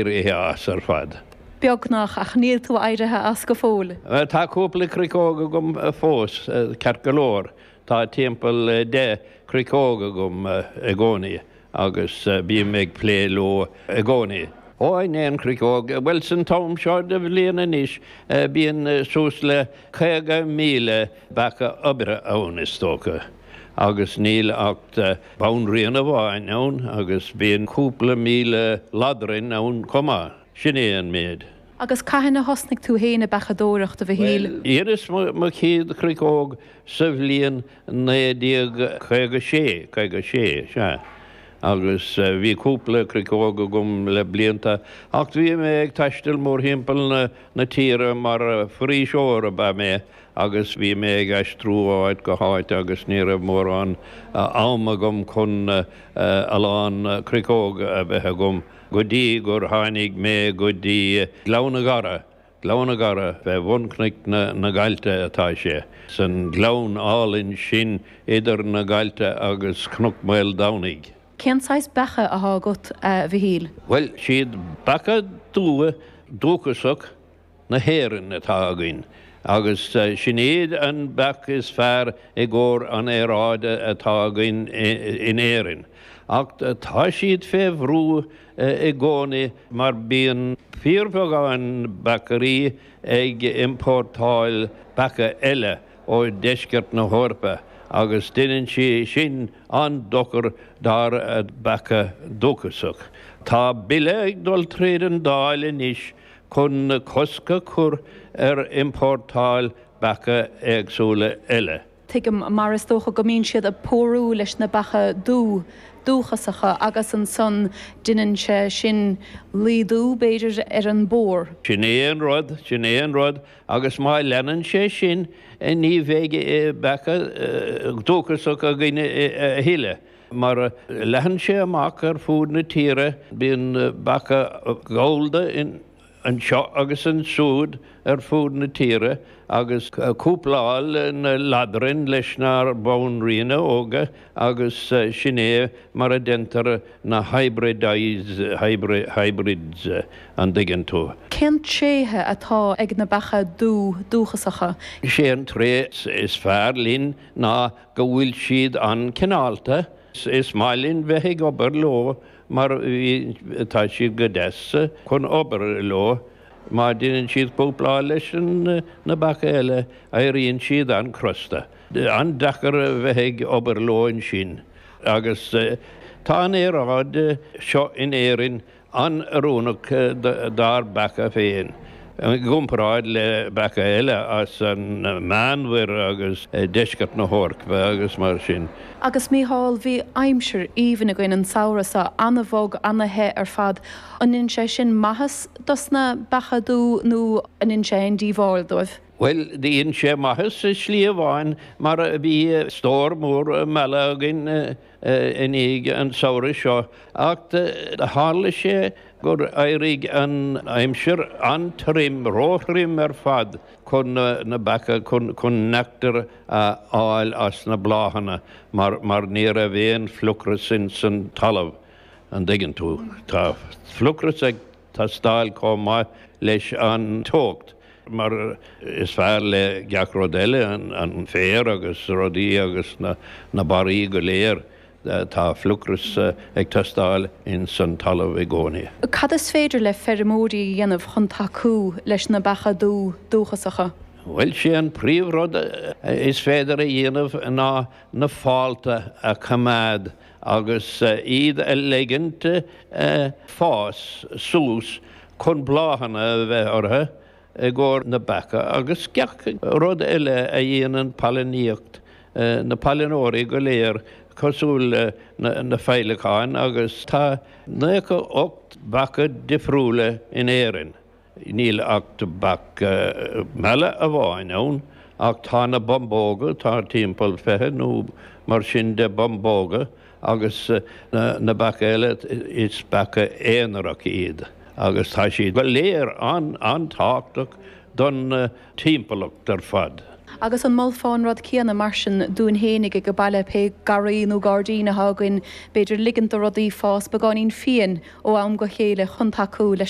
ar oíche as ar fad. Beagnach, ach níl tú éirithe as go fóill. Tá cúpla cruiceog agam fós, ceart go leor, tá timpeall deich cruiceog agam i gcónaí agus bím ag plé leo i gcónaí. Ó in aon chruiceog, bhuel san am seo de bhliain anois bíonn suas le 50,000 beacha oibre ann is dócha agus níl ach banríon amháin ann agus bíonn cúpla míle ladrainn ann chomh maith. Sin é an méid. Agus cathain a thosnaigh tú fhéin ag beachadóireacht, a Mhichíl? Bhuel, dheineas mo chéad chruiceog sa bhliain naoi déag caoga sé, caoga sé, sea. Agus bhí cúpla cruiceog agam le blianta, ach bhí mé ag taisteal mórthimpeall na tíre mar foraoiseoir ab ea mé, agus bhí mé ag aistriú ó áit go háit agus ní raibh mórán am agam chun a lán cruiceog a bheith agam go dtí gur tháinig mé go dtí Gleann na gCaorach. Gleann na gCaorach, fé bhun cnoic na nGaibhlte atá sé, san gleann álainn sin idir na Gaibhlte agus Cnoc Maoldomhnaigh. Cén saghas beacha athá agat, a Mhichíl? Bhuel, is iad beacha dubha dúchasach na hÉireann atá againn agus sin iad an beach is fearr i gcomhair an aeráide atá againn in Éirinn ach tá siad fé bhrú i gcónaí mar bíonn fíorbheagán beachairí ag iompórtáil beacha eile ó deisceart na hEorpa agus deineann sé sin an-dochar dár beacha dúchasach. Tá bille ag dul tríd an Dáil anois chun cosc a chur ar iompórtáil beacha éagsúla eile. Tuigim, mar is dócha, go mbíonn siad ag pórú leis na beacha dubha dúchasacha agus ansan deineann sé sin laghdú, b'fhéidir, ar an bpór. Sin é an rud, sin é an rud, agus má leanann sé sin ní bheidh beacha dúchasacha againn a thuilleadh. Mar a leathann sé amach ar fud na tíre bíonn beacha gallda anseo agus ansúd ar fud na tíre agus cúplálann na ladrainn leis na banríona óga agus sin é mar a déantar na hybrids, an dtuigeann tú. Cén tréithe atá ag na beacha dubh dúchasacha? Sé an tréith is fearr linn ná go bhfuil siad an-chineálta, is maith linn bheith ag obair leo mar tá siad go deas chun obair leo, má deineann siad cúpláil leis na beacha eile, éiríonn siad an-chrosta. An-deacair bheith ag obair leo ansin, agus tá an aeráid seo in Éirinn an-oiriúnach dár mbeacha féin i gcomparáid le beacha eile as an Meánmhuir agus deisceart na hEorpa agus mar sin. Agus Mícheál, bhí aimsir aoibhinn againn an samhradh seo, an-bhog, an-the ar fad. An ndéanann sé sin maitheas dos na beacha dubha nó an ndéanann sé aon díobháil dóibh? Bhuel, dhein sé maitheas i slí amháin mar bhí stór mór meala againn. i ndiaidh an tsamhraidh seo ach tharla sé gur éirigh an aimsir an-tirim, róthirim ar fad chun na beacha, chun neachtar a fháil as na bláthanna mar ní raibh aon fliuchras insan talamh, an dtuigeann tú. Tá fliuchras ag. teastáil chomh maith leis an teocht, mar is fearr le gach rud eile, an féar agus rudaí agus na barraí go léir, tá fliuchras ag teastáil ins an talamh i gcónaí. Cad is féidir le feirmeoirí a dhéanamh chun tacú leis na beacha dubha dúchasacha? Bhuel, sé an príomhrud is féidir a dhéanamh ná na fálta a choimeád agus iad a ligint fás suas chun bláthanna a bheith orthu i gcomhair na beacha agus gach rud eile a dhéanann pailiníocht na pailineoirí go léir cosúil le na féileacáin agus tá naocha ocht mbeacha difriúla in Éirinn. Níl ach beach meala amháin ann, ach tá na bumbóga, tá timpeall fiche nó mar sin de bumbóga, agus na beacha eile, is beacha aonaracha iad, agus tá siad go léir an-tábhachtach don timpeallacht ar fad. Agus an molfá an rud céanna, mar sin, dúinn fhéinig age baile, pé garraí nó gairdín atá againn, b'fhéidir, ligint do rudaí fás beagáinín fiain ó am go chéile chun tacú leis